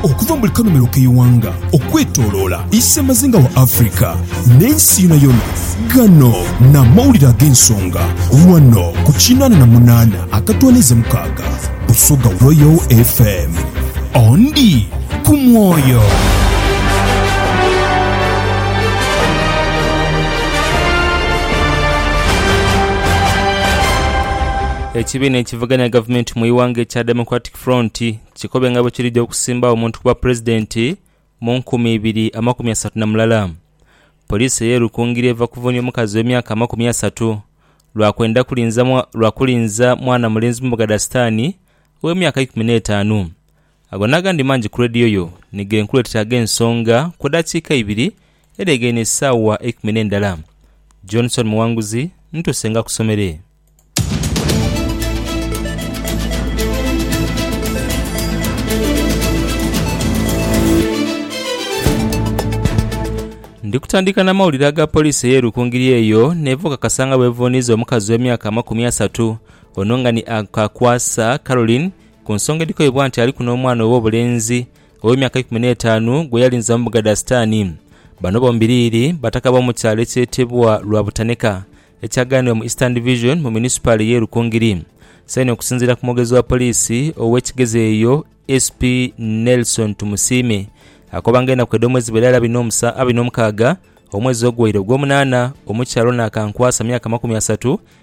Okuva mu buli kanhumiro k'eighanga okwetoloola isemazinga wa Africa n'ensi yonayona, gano n'amawulire ag'ensonga ghano ku kinaana na munaana akatwaniiza mukaaga Busoga Royal FM. Ondi ku mwoyo. Ekibiina ekya ekivuganya gavumenti mu ighanga ekya Democratic Front kikobe nga bwekirija okusimbagho omuntu ku bwa pulezidenti mu nkumi ibiri amakumi asatu na mulala. Poliisi eye Rukungiri eva kuvunia omukazi owe myaka amakumi asatu lwa kwenda kulinza lwa kulinza mwana mulenzi mumbuga dha sitani owe myaka ikumi n'etaanu. Ago n'agandi mangi ku leediyo yo ni ge nkuleetera ag'ensonga ku edaakiika ibiri edhegeine esaawa eikumi n'endala. Johnson Muwanguzi ntuuse nga akusomere. Ndi kutandika n'amawulire aga poliisi ey'e Rukungiri eyo n'eva okakasa nga bw'evuuniiza omukazi ow'emyaka amakumi asatu ono nga ni Kakwasa Caroline Ku nsonga edhikoibwa nti aliku n'omwana ow'obulenzi ow'emyaka ikumi n'etaanu gwe yalinza mu bugha dha Sitaani. Bano bombiriri bataka b'omu kyalo ekyetebwa Lwabutaneka ekyaghanibwa mu Eastern Division mu munisipaali y'e Rukungiri saino okusinziira ku mwogezi wa poliisi ow'e Kigezi eyo SP Nelson Tumusiime akoba nga enaku edh'omwezi bali ari abiri n'omukaaga omwezi ogwaire ogw'omunaana omukyala ono akankwasa myaka makumi asatu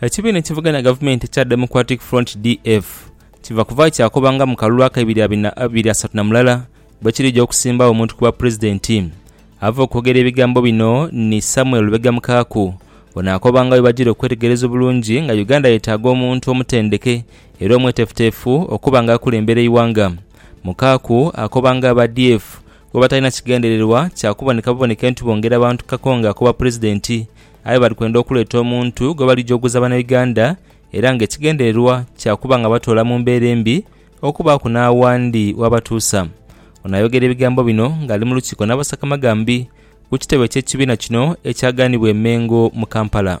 Ekibiina ekivuganya gavumenti ekya Democratic Front, DF, kiva kuvayo kyakoba nga mu kalulu akaibiri abiri asatu na mulala bwekirija okusimbawo omuntu ku bwapulezidenti. Ava okwogera ebigambo bino ni Samuel Lubega Mukaaku, ono akoba nga bwebajira okwetegereza obulungi nga Uganda yetaaga omuntu omutendeke era omwetefutefu okuba nga akulembera eighanga. Mukaaku akoba nga aba DF Bwo batalina kigendererwa kya kuboneka buboneke nti bongera bantu Kakonge akoba Pulezidenti, aye bali kwenda okuleeta omuntu gwe bali jogoza Banauganda era nga ekigendererwa kya kuba nga batoola mu mbeera embi okubaaku n'awandi w'abatuusa. Ono ayogera ebigambo bino nga ali mu lukiiko n'abasakamagambi ku kitebe ky'ekibiina kino ekyaganibwa e Mengo mu Kampala.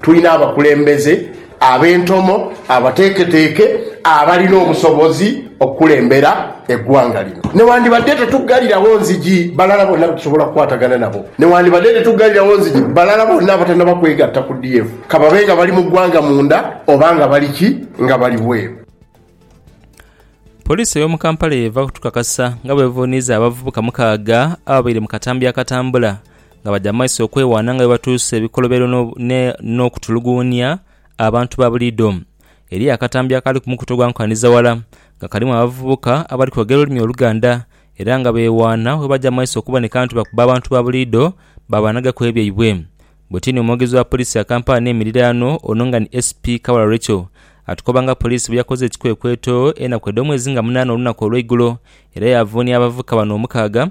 Tulina abakulembeze ab'entomo, abateeketeeke, abalina obusobozi okukulembera eggwanga lino. Newandibadde tetuggalirawo nzigi balala bonna be tusobola okukwatagana nabo, newandibadde tetuggalirawo nzigi balala bonna abatanaba kwegatta ku DF, ka babe nga bali mu ggwanga munda oba nga bali ki, nga bali bweru. Poliisi ey'omu Kampala y'eva kutukakasa nga bw'evuuniiza abavubuka mukaaga ababaire mu katambi akatambula nga badha mu maiso okwewaana nga bwe batuusa ebikolobero n'okutuluguunia abantu ba buliidho. Eriyo akatambi akaali ku mukutu ogwa Nkanizaghala nga kalimu abavubuka abali kwogera olulimi Oluganda era nga beewaana bwe baja mu maiso okuboneka nti bakuba abantu ba buliidho baabanhagaku ebyaibwe. Bwetini omwogezi wa poliisi ya Kampala n'emiriraano ono nga ni SP Kabala Rachael atukoba nga poliisi bwe yakoze ekikwekweto enaku edh'omwezi nga munaana olunaku olw'eigulo era yaavuunia abavubuka bano omukaaga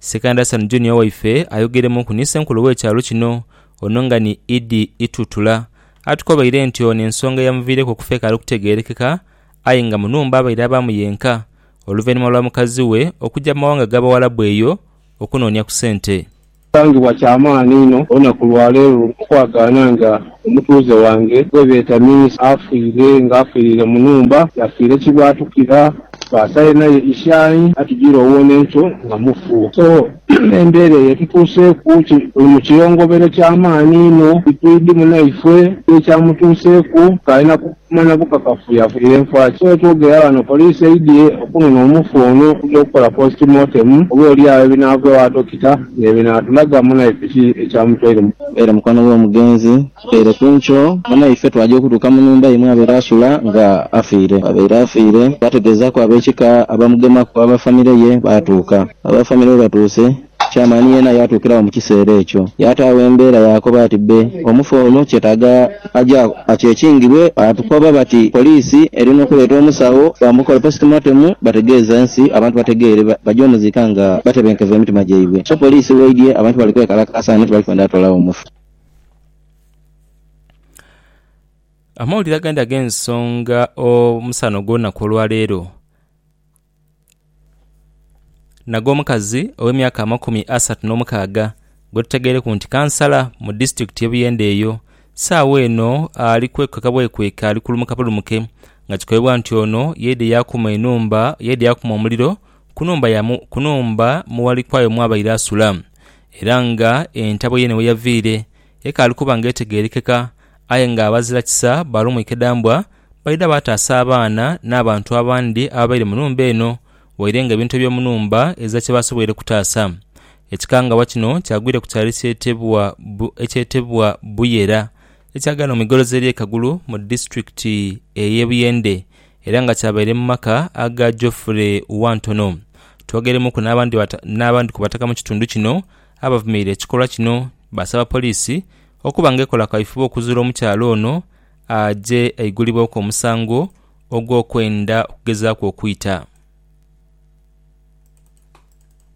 Sekanda San Junior waife ayogeremunku ni Ssenkulu w'ekyalo kino ono nga ni Idi Itutula atukobaire nti ono ensonga eyamuviireku okufa ekaali kutegeerekeka aye nga mu nhumba abaire abaamu yenka oluvainhuma lwa mukazi we okuja mu mawanga ga Bawalabu eyo okunoonia ku sente. Kisangibwa kya maani inho olunaku lwa leero okwagaana nga Omutuuze wange gwe beeta Miisa afiire nga afiirire mu nhumba yafiire kibwatukira twasale naye ishayi atujire owona enkyo nga mufu so embeera eyo etutuuseeku tuli mu kiyongobero kya maani inho titwidi munaifwe ki ekyamutuuseeku kale na Okumanya kukakafu yafunire nfa ki? Wetwogera ghano poliisi eidhye okunona omufu ono okugya okukola post mortem oba olyagho ebinaava ewa dokita nebinaatulaga munaife ki ekyamutwaire mu. Era mukwano w'omugenzi kikeire ku nkyo munaife twagya okutuuka mu nhumba ye mwabaire asula nga afiire. Bwabaire afiire twategeezaaku ab'ekika abamugemaku aba famire ye baatuuka. Aba famire bwebatuuse Chairman yeena yaatuukiragho mu kiseera ekyo. Yaataagho embeera yaakoba ati, Bbe, omufu ono kyetaaga aje akyekingirwe. Baatukoba bati, Poliisi eri n'okuleeta omusawo bamukole postmortem bategeeze ensi, abantu bategeere baje omuziika nga batebenkevu emitima gyaibwe. So poliisi bw'eidhye, abantu bali kwekalakaasa ghano tibali kwenda toolagho mufu. Amawulire agandi ag'ensonga omusana ogw'olunaku olwaleero. nag'omukazi ow'emyaka amakumi asatu n'omukaaga gwe tutegaireku nti Kansala mu disitulikiti ye Buyende eyo sawa eno ali kwekweka bwekweka ali kulumuka bulumuke nga kikobebwa nti ono yaidye yakuma enhumba yaidye yakuma omuliro ku nhumba mu Walikwayo mwabaire asula era nga entabwe ye ni weyaviire ekaali kuba nga etegerekeka aye nga abazira kisa balumwika edambwa. Baidha baataasa abaana n'abantu abandi ababaire mu nhumba eno waire nga ebintu eby'omu nhumba ezira kye baasoboire kutaasa. Ekikangabwa kino kyagwire ku kyalo ekyetebwa Buyera ekyaghera mu migolozi ery'e Kagulu mu disitulikiti ey'e Buyende era nga kyabaire mu maka aga Geoffrey Wantono. Twogeremuuku n'abandi ku bataka mu kitundu kino abavumirira ekikolwa kino baasaba poliisi okuba nga ekola kaifube okuzuula omukyala ono aje aigulibweku omusango ogw'okwenda okugezaaku okwita.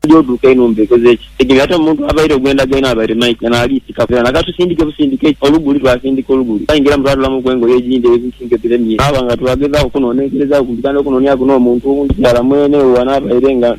Oja oduuka enhumba ekoze eki tegere ate omuntu avaire ogwenda gwaine abaire Mike eno aliisikaku era nakatusindike busindike eki oluguli twasindika oluguli twaingiramu twatolamuku engoye egindi era ebintu ebyo biremye twaba nga twagezaaku okunonenkerezaaku kumpi kandi okunoniaku n'omuntu owundi Kiara mwene owo anabaire nga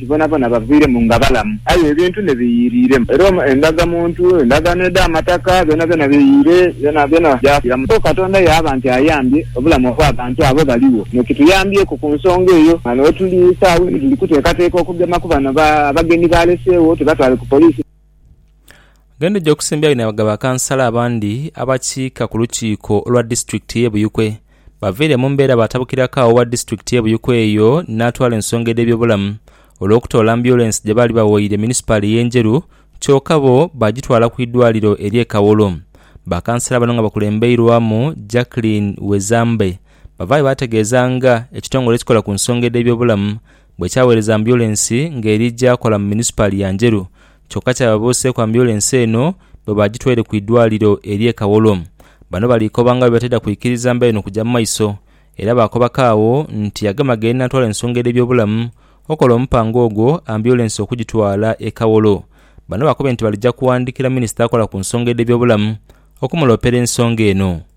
Bonabona baviiremu nga balamu, aye ebintu ne biyiiriiremu. Era endagamuntu, endagaano edh'amataka, byonabyona biyiire, byonabyona byafiiramu. Kwo Katonda yaaba nti ayambye obulamu obw'abantu abo baligho. Kino kituyambyeko ku nsonga eyo. Ghano wetuli saagho eno tuli kuteekateeka okugema ku bano abagenyi baaleseegho tubatwale ku poliisi. Genda oja okusimbira bino nga bakansala abandi abakiika ku lukiiko olwa disitulikiti y'e Buyikwe baviire mu mbeera baatabukiraku agho owa disitulikiti y'e Buyikwe eyo n'atwala ensonga edh'ebyobulamu olw'okutoola ambyulensi gye baali bawoire munisipaali ey'e Njeru kyoka bo baagitwala ku idwaliro ery'e Kawolo. Bakansala bano nga bakulembeirwamu Jacklin Wezambe bavaayo baategeeza nga ekitongole ekikola ku nsonga edh'ebyobulamu bwe kyaweereza ambyulensi ng'eri gy'akola mu munisipaali ya Njeru kyokka kyababuuseeku ambyulensi eno bwe baagitwaire ku idwaliro ery'e Kawolo. Bano bali koba nga bwe bataidha kwikiriza mbeera eno kugya mu maiso era baakobako agho nti agema ghe n'atwala ensonga edh'ebyobulamu okola omupango ogwo ambyulensi okugitwala e Kawolo. Bano bakubye nti baligya kuwandiikira minisita akola ku nsonga edh'ebyobulamu okumuloopera ensonga eno.